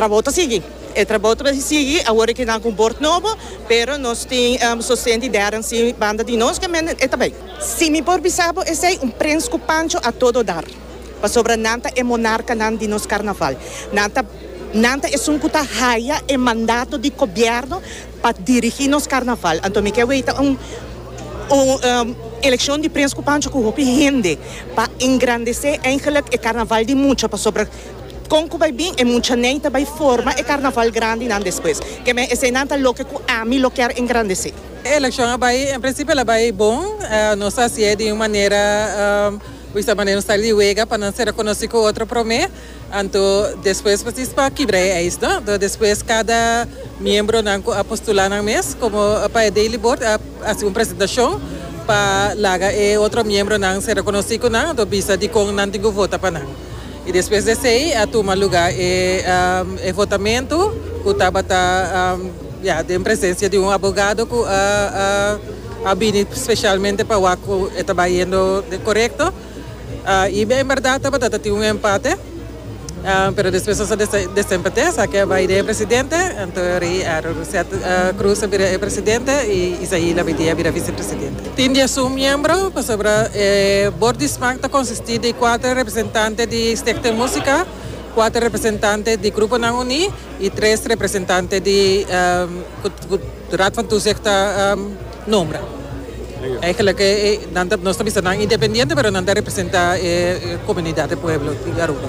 Trabou ta sigui. E trabou ta mester sigui awor ke nan ku un bord nobo, pero nos tin sosten di Darren si banda di nos ke men e ta bai. Si mi por bisa bo esei, un prens ku pancho a todo dar, pasobra nan ta e monarkanan di nos karnaval. Nan ta nan ta esun ku ta haya e mandato di kobièrnu pa dirigí nos karnaval. Anto mi ke weta un un elekshon di prens ku pancho ku hopi hende pa engrandesé eigenlijk e karnaval di mucha pasobra Kon ku bai bin e muchanan ta bai forma e karnaval grandinan despues? Ke mes esenan ta loke ku ami lo kier engrandesé? E elekshon a bai, en prinsipio el a bai bon. Nos a hasié di un manera, wi sa manera nos ta di wega pa nan ser konosí ku otro promé, anto despues presis pa kibra e ijs, no? Anto despues kada miembronan ku a postulá nan mes komo pa e daily board a hasi un presentashon pa laga e otro miembronan ser konosí ku nan, anto bisa dikon nan tin ku vota pa nan. I despues di esei a tuma lugá e e votamentu ku tabata ya den presensia di un abogado ku a a a bini spesialmente pa wak ku e ta bai yendo korekto. I en bèrdat tabata ta tin un empate pero despues nos a desempat'é sa ke a bai den e presidente anto rei a renunshiá Cruz a bira e presidente i Isaí Labitié a bira visepresidente. Tin diasun miembro, pasobra e bord di smaak ta konsistí di kuater representante di Stichting Música, kuater representante di Gruponan Uní i tres representante di ku ku Raad van Toezicht ta nombra. Eigenlijk nan ta nos ta bisa nan independiente pero nan ta representá e komunidat di pueblo di Aruba.